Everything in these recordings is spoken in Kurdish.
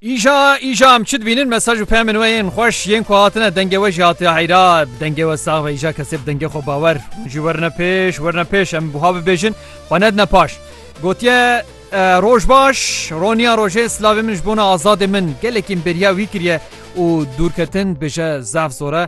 Îja îja em çi dibînin mesaj û pemên we yên xweş yên ku hatine dengê we jî hatiye heyra dengê we sax ve îja kesê bi dengê xwe bawer hûn jî werine pêş werine pêş em buha bibêjin xwe nedine paş gotiye roj baş roniya rojê slavê min ji bona azadê min gelekî bêriya wî kiriye û dûrketin bêje zaf zor e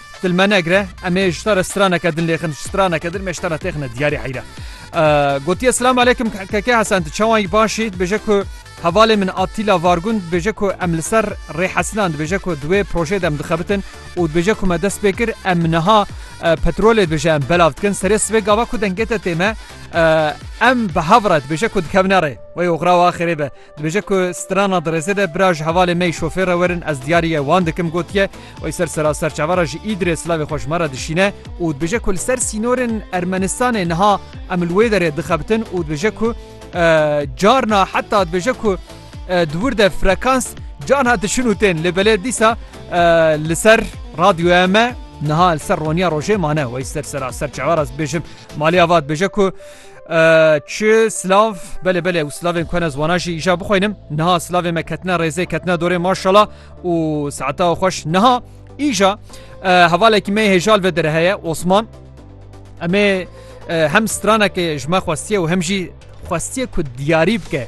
Dilmenegre em ê ji te re straneke din lêxin ji straneke din me ji te re têxine diyarê heyre. Gotiye selam alekim keke Hesen tu çawan yî başî dibêje ku hevalê min Atîla Vargun dibêje ku em li ser rê hesinan dibêje ku di wê projeyê de em dixebitin û dibêje ku me dest pê kir em niha petrolê dibêje em belav dikin serê sibê gava ku dengê te tême em bi hev re dibêje ku dikevne rê wê oxra wa xêrê be Dibêje ku strana di rêzê de bira ji hevalê me yî şofêr re werin ez diyariye wan dikim gotiye wê ser sera serçava re ji Îdirê silavê xwe ji me re dişîne û dibêje ku li ser sînorên Ermenistanê niha em li wê derê dixebitin û dibêje ku carna heta dibêje ku di wir de frekans carna diçin û tên lê belê dîsa li ser radyoya me niha li ser roniya rojê mane wey ser sera serçava re dibêjim malê ava dibêje ku Çi silav belê belê û silavên ku hene ziwana jî îja bixwînim niha silavê me ketine rêzê ketine dorê maşala û saeta xweş niha îja hevalekî me hêjal ve dire heye Osman Emê hem stranekê ji me xwestiye û hem jî xwestiye ku diyarî bike.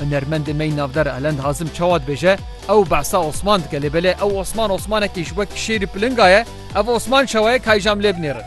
Hunermendê me yî navdar Elend Hazim çawa dibêje, Ew behsa Osman dike lê belê ew Osman Osmanekî ji wek şêrî pilinga ye, ev Osman çawa ye kayî jam lê binêrin.